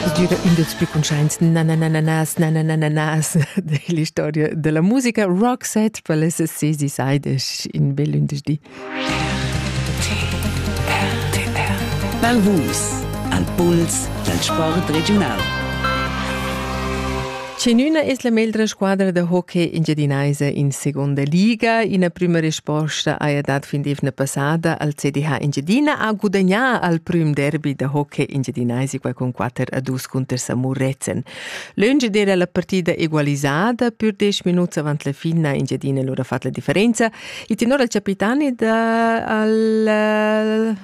Es gnüda ün dals plü cuntschaints na na na na nas na na na na nas dell'istoria della musica. Roxette per les ses decide in bel lündeschdi. Dal Vus al puls dal sport regiunal. Chenüna es la meglra squadra da hockey engiadinaisa in seguonda liga? Ina prüma resposta haja dat fin d'eivna passada al CDH Engiadina, ha gudagnà al prüm derbi da hockey engiadinaisico con 4 a 2 cunter Samurezen. Lönge d'eira la partida egualisada, pür 10 minuts avant la finna Engiadina lura fat la differenza. Il tenor al capitani da al eh,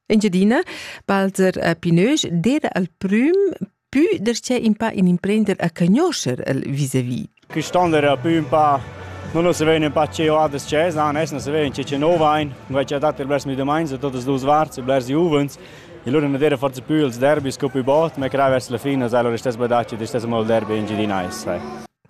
Engiadina, Balzer eh, Pinög, d'eira al prüm Pü darcheu in pa in imprender a cagnoscher el vis-à-vis. Quist'onda era pü un pa non lo savein un pa che ho adas chesa, nes non savein che che no vain. Vai che dat blers mi domains, todas duas varts, blers juvens. E loro non era forse più ils derby sco più bot, ma crai verso la fine sai loro stess badaci, stess mal derby in Gidinais, sai.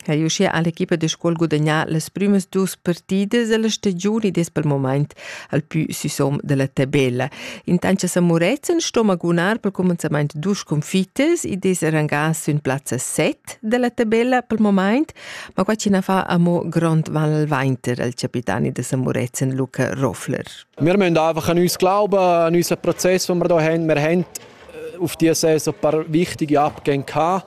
ha er uschia l'equipa da scola gudagnà las prümas dus partidas da la stagiun ed es pel momaint al pü süsom da la tabella. Intant cha San Murezzan sto magunar pel cumenzamaint dus sconfittas ed es rangà sün plazza 7 da la tabella pel momaint, ma qua chi na fa amo grond val al vainter al capitani da San Murezzan Luca Roffler. Wir müssen einfach an uns glauben, an unseren Prozess, den wir hier haben. Wir haben äh, auf dieser Saison ein paar wichtige Abgänge gehabt.